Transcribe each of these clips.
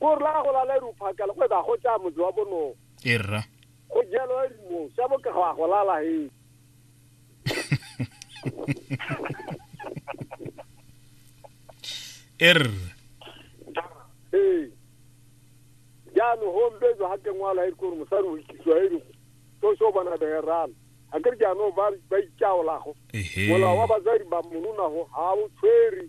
ko rra go lala ere o phakela go eba go tsaya motse wa bonogo e rra go jalo a rimo sa boka go a go lala he e rra ee jaanong gombetso ga kengwalo ga e kore mosadi o ikisiwa e re so so bona begerana ga kere jaanong ba ba ikaolago ehe molao wa basadi ba mononago ga o tshwere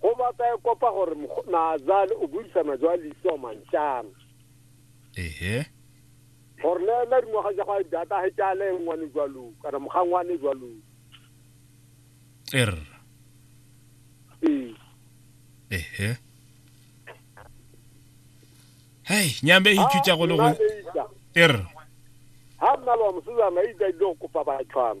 go batla e kopa gore naazale o buisana jwa leiso mantšana ehe gore le ena dingwaga ja go a data a hetse a le ngwane jwalo kana mogangwane jwalo er ee ehe hei nyambe e itšutša go le go er ha nna le wa mosetsana itsa ile go kopa batshwana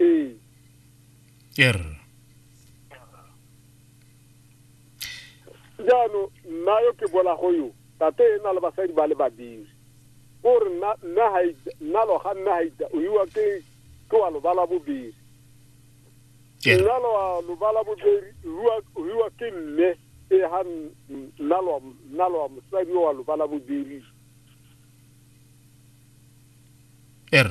Ee. Er. jaanong nna yo ke bolago yo tate e na le basadi ba le babiri o re nna nna ha ita- nna lo ga nna ha ita o iwa ke ke wa lobala bobedi Er. nna lo wa lobala bobedi rua o iwa ke mme e ha n- n- nna lo wa- nna lo wa mosadi o wa lobala bobedi Er.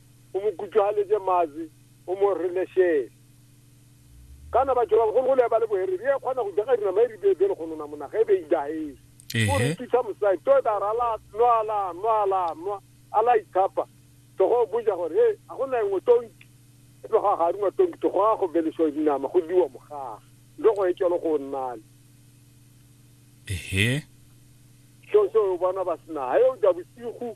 o mo kutšwagaletse mazi o mo relešele kana batho ba bagolo go le ba le bohere bje kgona go jaga dinama e re bebe le go nona monaga e be e dahele o re thusa mosadi to e dara la nwa la nwa la nwa a la itshapa togo boja gore e ga go na engwe tonki e tlogo ga ga rungwa tonki togo ga go beleswa dinama go diwa mogaga le go e tšelo go nnale ehe so so o bona ba sena ga yo ja bosigo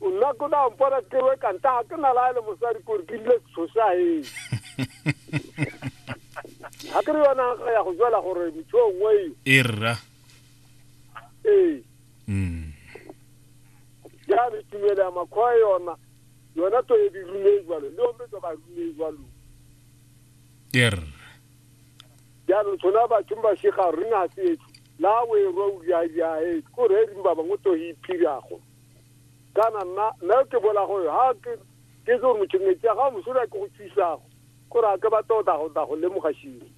nna ko da mpona ke we ka ntaga ke na la le mosadi kore ke rile setshosaeng ga ke re yona ga ya go jwela gore motho o nngwe e rra ee mm. jalo tumelo ya makgoa yona yona to e di rume jalo le ome to ba rume jalo e rra jalo tshona batho ba shega rena se la we ro ya ya e ko re ri ba bangwe to hi phirago kana nna nna ke bolago yo ha ke ke tse gore motho metsi a ga mosola ke go thusago gore a ke ba tota go tla go lemoga shiri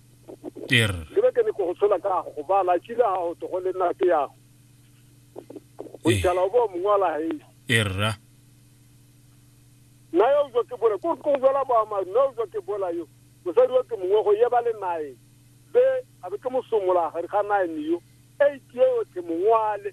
ter ke be ke ne ke go tshola ka go ba la tshile ha go to go le nna ke yago o ithala o bo mongwe wa la hei erra nna yo jo ke bole ko ko jola ba ma no jo ke bola yo mosadi wa ke mongwe go ye ba le nae be a be ke mosomola ga re ga nae yo e ke yo ke mongwale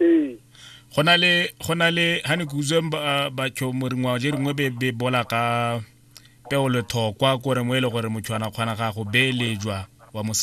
ee go na le go na le ha ne ke utswe batho moringwa je ringwe be be bola ka peo lethokwa kore mo e le gore motho ana kgona ga go beelejwa wa mo